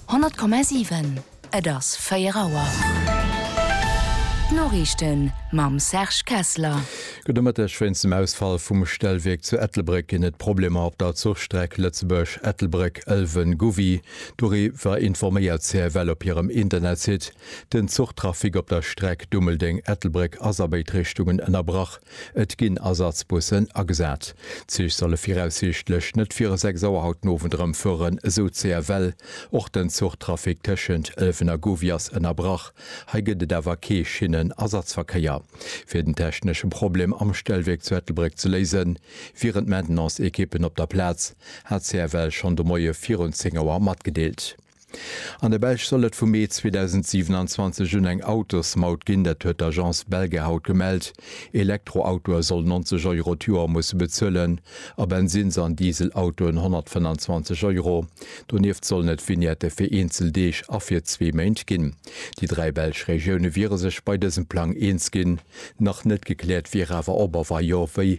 100,7, Et ass 4 Auer. D'Noriichten mam Serge Kessler. Gudde Mëtteg. Wéinst dem Ausfall vum Stellwierk zu Ettelbréck ginn et Problemer op der Zuchstreck Lëtzebuerg, Ettelbréck, Ëlwen, Gouvy. Doriwwer informéiert d'CFL op hirem Internetsite. Den Zuchtrafic op der Streck Dummeldeng, Ettelbréck ass a béid Richtungen ënnerbrach. Et ginn Ersatzbussen agesat. D'Zich solle viraussiichtlech net viru 6 Auer haut den Owend erëm fueren, esou d'CFL. Och den Zuchtrafic tëschent Ëlwen a Gouvy ass ënnerbrach. Hei gëtt et awer kee Schinnenersatzverkéier. Fir den technesche Problem am Stellwierk zu Ettelbréck ze léisen, wieren d'Maintenance-Ekippen op der Plaz, hat d'CFL schonn de Moie virun 10 Auer matgedeelt. An der Belsch soll et vum Mee 2027 un eng Autosmaut ginn. Dat huet d'Agence Belga haut gemellt. Elektroautoe sollen 90 Euro d'Joer musse bezuelen a Bensinns an Dieselautoen 125 Euro. Donieft sollen et Vignette fir eenzel Deeg a fir zwee Méint ginn. Déi dräi belsch Regioune wiere sech bei dësem Plang eens ginn. Nach net gekläert wier awer, ob a wa jo, wéi.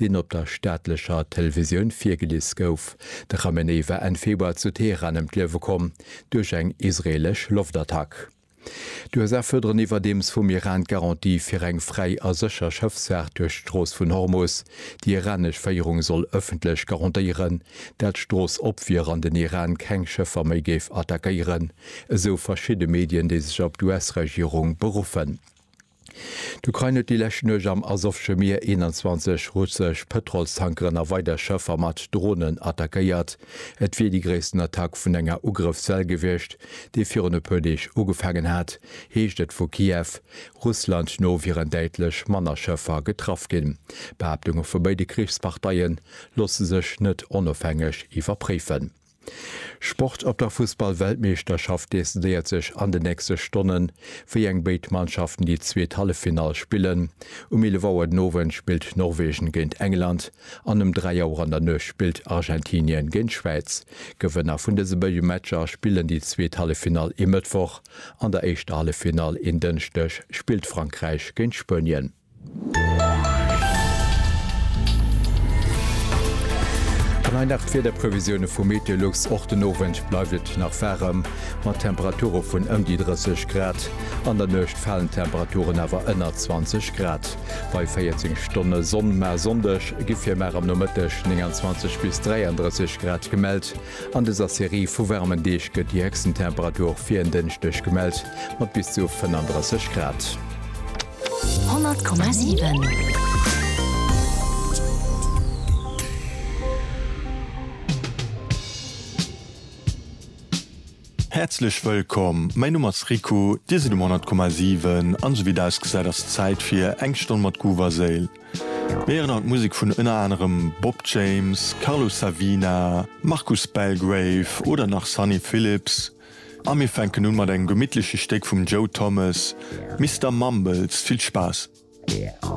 deen op der staatlecher Televisioun virgelies gouf. De Khamenei war Enn Februar zu Teheran ëm d'Liewe komm duerch eng israeelesch Loftattack. D'USA fuerderen iwwerdeems vum Iran d'Garantie fir eng fräi a sécher Schëffsfaart duerch d'Strooss vun Hormus. Déi iranesch Féierung soll ëffentlech garantéieren, dat d'Strooss op wier an den Iran keng Schëffer méi géif attackéieren, esou verschidde Medien, déi sech op d'US-Regierung beruffen. D'Ukrain huet déi lescht Nuecht am Asowsche Mier 21 russesch Pëtrolstankeren a weider Schëffer mat Dronen attackéiert. Et wier déi gréissten Attack vun enger Ugrëffswell gewiescht, déi virun e puer Deeg ugefaangen hat, heescht et vu Kiew. Russland no wieren däitlech manner Schëffer getraff ginn. D'Behaaptunge vu béide Krichsparteie loosse sech net onofhängeg iwwerpréifen. Sport Op der Fussball-Weltmeeschterschaft decidéiert sech an de nächste Stonnen, wéi eng béid Mannschaften déi zweet Halleffinall spillen. Um 11 Auer den Owend spillt Norwegen géint England an um 3 Auer an der Nuecht spillt Argentinien géint Schwäiz. Gewënner vun dëse béide Matcher spillen déi zweet Halleffinall e Mëttwoch. An der éischter Halleffinall en Dënschdeg spillt Frankräich géint Spuenien. An hei nach d'Wiederprevisioune vu Meteolux, Och den Owend bleift et nach waarem, mat Temperature vun ëm déi 30 Grad. An der Nuecht falen d'Temperaturen awer ënner 20 Grad bei 14 Stonne Sonn. Mä e Sonndeg gi fir mar am Nomëtteg 29 bis 33 Grad gemellt. An dëser Serie vu waarmen Deeg gëtt déi héchsten Temperatur fir en Dënschdeg gemellt, mat bis zu 35 Grad. Häerzlech wëllkomm, mäin Numm ass Riku, dir sidd um 100,7 an esou wéi et ausgesäit ass et Zäit fir eng Stonn mat Groove a Séil. Mir héieren haut Musek vun ënner anerem Bob James, Carlos Savina, Marcus Belgrave oder nach Sunny Phillips. A mir fänken un mat engem gemittleche Stéck vum Joe Thomas, Mister Mumbles. Vill Spaass!